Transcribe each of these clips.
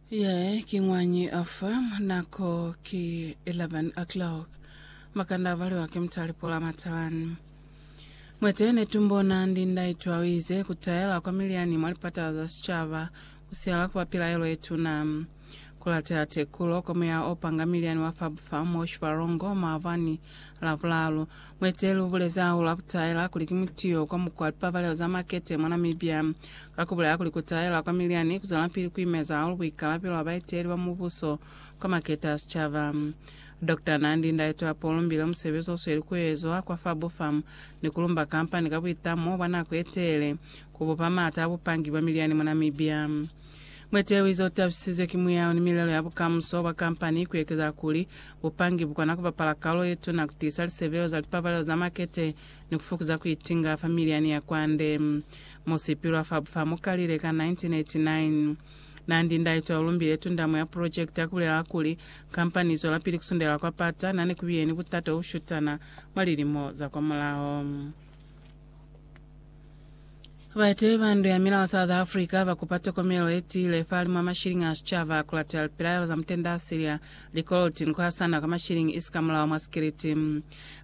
Ye ki ngwañi afa nako ki 11 o'clock makanda avaliwa ke mutalipo la matalani mwete netumbona ndindaitwa wize kutayela kwa miliani mwa lipata za sicaba kusiala kuba pilaelo yetuna kulatea tekulo kwa muya opanga miliani wa fabufam wa shivalongo mwavani la bulalu Mueteli ubulezi hahulu ha kutaela kuli ki mutiyo kwa mukwa wa lipabalelo za makete mwa Namibia, ka kubulela kuli kutaela kwa milyani kuzwelapili kuimeza hahulu buikalabelo bwa baeteli ba mubuso kwa makete a sicaba. Doctor Nandi Ndaitwah o lumbile musebezi osweli kuezwa kwa FaboFarm ni kulumba kampani ka buitamo bwa nako yetelele kubupa maata a bupangi bwa milyani mwa Namibia. Mueteleli ze utabisizwe ki muyao ni milelo ya bukamuso bwa kampani ku ekeza kuli, bupangi bu kona ku bapala kalulo ye tuna ku tiisa lisebeo za lipabalelo za makete ni ku fukuza ku itinga fa miliani ya kwande. Mo Sipilwa fa bufa mo kalile ka 1989, na ndi ndaitwa yo lumbile tundamo ya pulojekiti ya ku bulela kuli, kampani i zwelapili ku sundelela kwa pata, na ne ku biye ni butata u shutana mwa lilimo za kwamulaho. Bateyi ba Ndu ya Milao South Africa ba kupa tokomelo ye tiile fahalimw'a mashilingi a sicaba ku latela lipilaelo za mutenda a silya likoloti ni ku hasana kwa mashilingi isi ka mulao mwa sikiliti.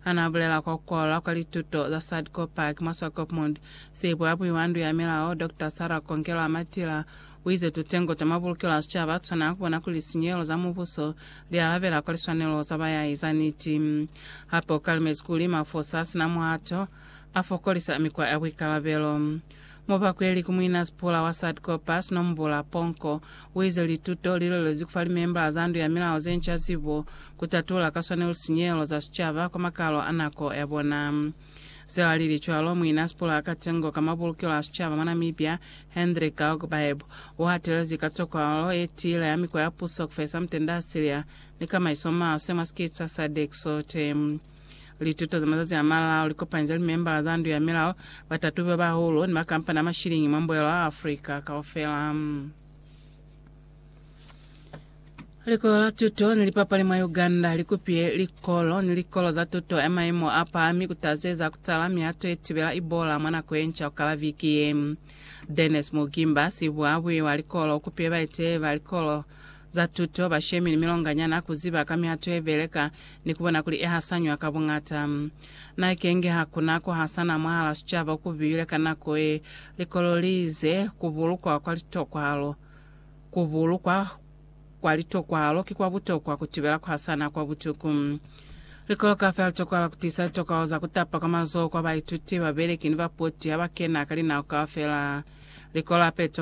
Ha n'a bulela kwa ku kwalola kwa lituto za Sadco Park mwa Swakopmund, sibuabui wa Ndu ya Milao, Doctor Sarah Kongelwa-Matila, u ize tutengo twa mabulukelo a sicaba a tshwana ku bona kuli lisinyehelo za mubuso li alabela kwa liswanelo za bayahi za niti. Hape u kalimezi kuli mafosa a si na muhato, a fokolisa mikwa ya buikalabelo. Mubakweli ku muina sipula wa Sadco Bass Nombula Ponko uize lituto li lwelezi kufa limembala za Ndu ya Milao zenca zibo ku tatula ka swanelo lisinyehelo za sicaba kwa makalo a nako ya bona. Zeo alili cwalo, muina sipula ka tengo ka mabulukelo a sicaba mwa Namibia, Hendrik Galgbaeb, uhatelezi ka tokwalo yetiile ya mikwa ya puso kufehisa mutende asilia ni kamaiso maswe mwa sikiti sa sadc sote. Lituto za mazazi a malao li kopanize limembala za Ndu ya Milao, batatubi ba bahulu, ni makampani a mashilingi mwa mbuyelo wa Afrika kaufela. Likolo la tuto ni lipapali mwa Uganda li kupile likolo ni likolo za tuto ya maimo a pahami ku tazeza ku tala mihato ye tibela Ebola mwa nako ye nca ku kala viki ye. Dennis Mugimba, sibuhabuhi wa likolo, u kupile baeteleli ba likolo za tuto, bashemi ni milonganyana, ku ziba ka mihato ye beleka ni ku bona kuli e hasanywa ka buñata. Na kenge ha ku na ku hasana mwahal'a sicaba ku bile ka nako ye likolo li ize, ku bulukwa kwa litokwahalo. Ku bulukwa kwa litokwahalo ki kwa butokwa ku tibela ku hasana kwa butuku. Likolo kaufela li tokohala ku tiisa litokwahalo za ku tapa kwa mazoho kwa baituti, babeleki ni bapoti ha ba kena ka linao kaufela. Likolo hape li tokohala